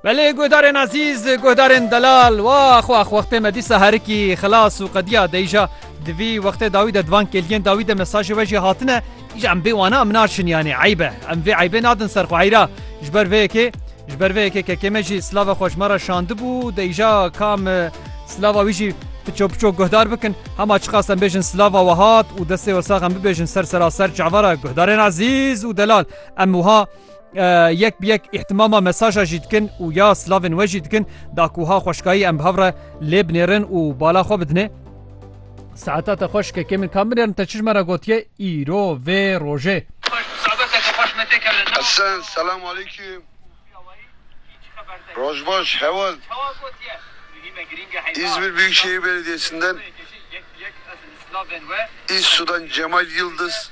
Belê guhdarên ezîz guhdarên delal wax wax wextê me dîsa herikî xilas û qediya deyja divî wextê dawî de divan kêliyên dawî de mesajê we jî hatine îja em bê wana em naçin yanê eybe em vê eybê nadin ser xwe eyra ji ber vê yekê ji ber vê yekê kekê me jî silava xweşma re şandibû deyja kam silava wî jî piço piço guhdar bikin hema çiqas em bêjin silava we hat û destê we sax em bibêjin ser seraser çavara guhdarên ezîz û delal em wiha yek bi yek îhtimama mesaja jî dikin û ya slavên we jî dikin da ku ha xweşkayî em bi hev re lê binêrin û bala xwe bidinê Saeta te xweş kekê min kam binêrin te çijme re gotiye îro vê rojê. Esen selam alîkim Roj baş heval İzmir Büyükşehir Belediyesi'nden İz Sudan Cemal Yıldız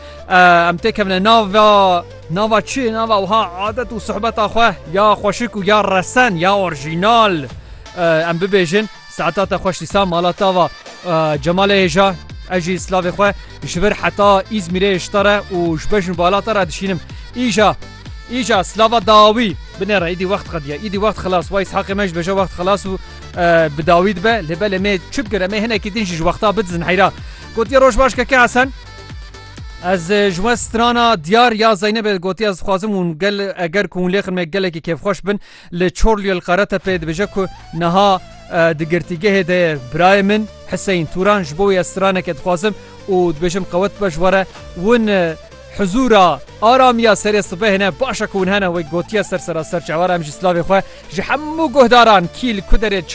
Em têkevine nava nava çi nava wiha adet û sohbeta xwe ya xweşik û ya resen ya orjînal em bibêjin saeta te xweş dîsa mala tava Cemalê hêja ez jî slavê xwe ji vir heta îzmîrê şita re û ji bejin bala te re dişînim îja îja slava dawî binê re îdî wext qediye îdî wext xilas way haqê me ji beje wext xilas û bi dawî dibe lê belê me çi bikire me hinekî din jî ji wexta bidizin heyra gotiye roj baş keke hesen Ez ji we strana diyar ya Zeynebê gotiye ez dixwazim hûn gel eger ku hûn lê xirmê gelekî kêfxweş bin li Çorliyê li Qeretepê dibêje ku niha di girtîgehê de ye birayê min Hiseyin Turan ji bo wê ez straneke dixwazim û dibêjim qewet be ji were hûn huzûra aramiya serê sibehê ne baş e ku hûn hene wek gotiye ser serasser çewar em jî silavê xwe ji hemû guhdaran kîl kuderê